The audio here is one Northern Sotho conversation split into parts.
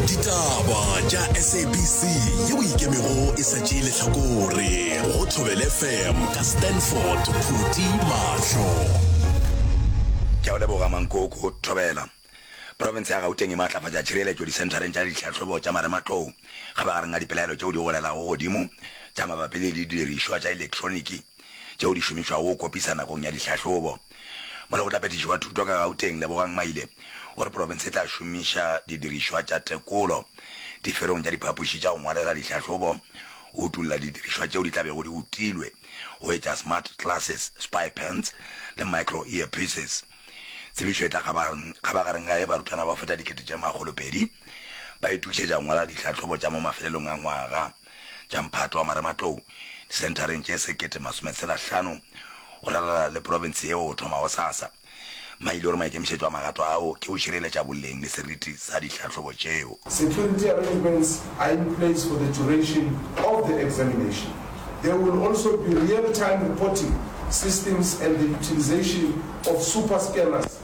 ditaba tša sabc yeo e ikemego e sa tšee lehlakore go thobele fm ka stanford phuti mahlo ke a o leboga mankoko thobela profense ya gauteng e maatlafatša tšhireletšo disenthareng tša ditlhahlobo tša marematlou ga magareng a dipelaelo tšeo di golelago godimo tša mabapi le didirišwa tša elektroniki tšeo di šomišwago go kopisa nakong ya dihlahlobo. Molekgotlaphethiši wa Thuto ka Gauteng, Lebogang Maile, o re profense e tla šomiša didirišwa tša tekolo diferong tša diphapoši tša go ngwalela dihlahlobo go utolla didirišwa tšeo di tla bego di utilwe go etša smart glasses, spy pens le micro earpieces. Tsebišo e tla kgabagareng ga ge barutwana ba feta dikete tše makgolopedi ba itokišetša go ngwala dihlahlobo tša mo mafelelong a ngwaga. tša mphato wa marematlou disenthareng tše sekete masome tshela hlano go ralala le profense yeo go thoma gosasa. Mma ile gore maikemišetšo a magato ao ke go šireletša boleng le seriti sa dihlahlobo tšeo. Security arrangements are in place for the duration of the examination. There will also be real-time reporting systems and the utilisation of super scanners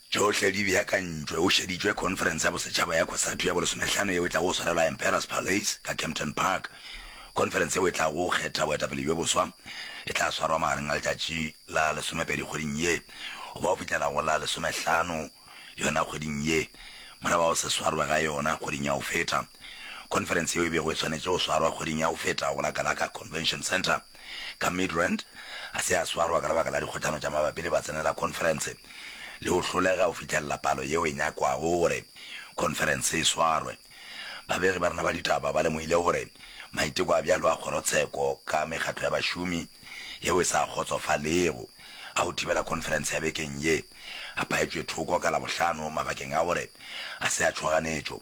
Tšohle di beakantšwe, o šeditšwe khonferense ya bosetšhaba ya Cosatu ya bolesomehlano yeo e tlago go swarelwa Emperors Palais ka Kempton Park. Khonferense yeo e tlago go kgetha boetapele bjo boswa e tla swarwa magareng a letšatši la lesomepedi kgweding ye goba go fihlela go la lesomehlano yona kgweding ye. Morago ga go se swarwe ga yona kgweding ya go feta, khonferense yeo e bego e swanetše go swarwa kgweding ya go feta go la Gallagher Convention Centre, ka Midrand a se a swarwa ka lebaka la dikgotšano tša mabapi le batsenela khonferense le go hlolega go fihlelela palo yeo e nyakwago gore khonferense e swarwe. Babegi ba rena ba ditaba ba lemohile gore maiteko a bjalo a kgorotsheko ka mekgatlo ya bašomi yeo e sa kgotsofalego a go thibela khonferense ya bekeng ye a paetšwe thoko ka Labohlano mabakeng a gore a se a tšhoganetšo.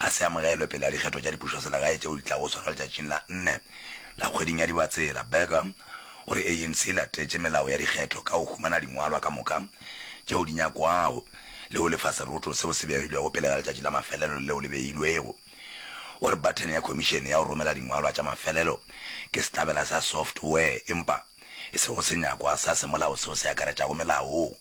a se amogelwe pele ga dikgetho tša dipušoselegae tšeo di tlago swarwa letšatšing la nne la kgweding ya Dibatsela. Burger o re ANC e latetše melao ya dikgetho ka go humana dingwalwa ka moka tšeo di nyakwago le go lefa seroto seo se begilwego pele ga letšatši la mafelelo leo le beilwego. O re bathene ya khomišene ya go romela dingwalwa tša mafelelo ke sehlabela sa software empa e sego senyakwa sa semolao seo se akaretšago melao.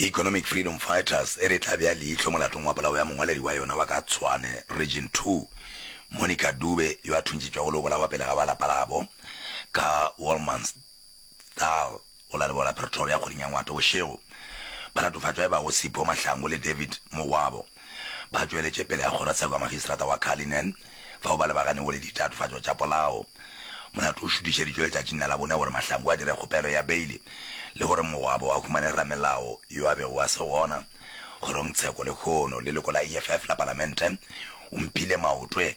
Economic Freedom Fighters e re e tla bea leihlo molatong wa polao ya mongwaledi wa yona wa ka Tshwane Region Two, Monica Dube yo a thuntšitšwego le go bolawa pele ga ba lapa labo ka Wolmansthal go la leboa la Pretoria kgweding ya Ngwatobošego. Ba latofatšwa e ba go Sipho Mahlangu le David Mogwabo. Ba tšweletše pele ga kgorotsheko ya Magistrata wa Cullinan fao ba lebaganego le ditatofatšo tša polao. Molato o šutišeditšwe letšatšing la Labone gore Mahlangu a dire kgopelo ya beile le gore mogwabo a humane ramelao yo a bego a se gona kgorongtsheko lehono leloko la EFF la Palamente o mphile maotwe.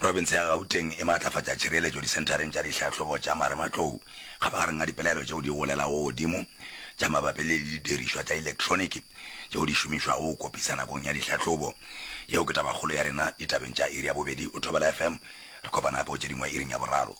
Profense ya Gauteng e maatlafatša tšhireletšo disenthareng tša dihlahlobo tša marematlou kgabagareng a dipelaelo tšeo di golelago godimo tša mabapi le didirišwa tša elektroniki tšeo di šomišwago go kopisa nakong ya dihlahlobo. Yeo ke tabakgolo ya rena ditabeng tša iri ya bobedi. O thobela FM. Re kopana gape go tše dingwe iring ya boraro.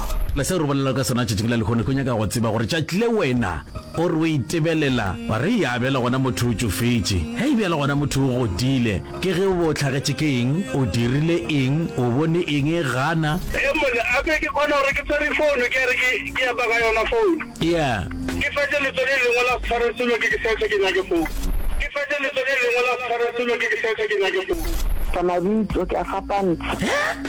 Le seo re bolela ka sona tšatšing la lehono ke go nyaka go tseba gore tšatši le wena o re o itebelela wa re, Yaa, bjale gona motho o tšofetše. Hei, bjale gona motho o godile. Ke ge o be o hlagetše ke eng, o dirile eng, o bone eng, gana. Hei, mole gape ke kgona gore ke tshware founo, ke a re ke, ke epa ka yona founo. Eya. Ke fetše letso le lengwe la go tshwara selo ke ke seetša ke nyake founo. Ke fetše letso le lengwe la go tshwara selo ke ke seetša ke nyake founo. Tša mabitso, ke a fapantsha.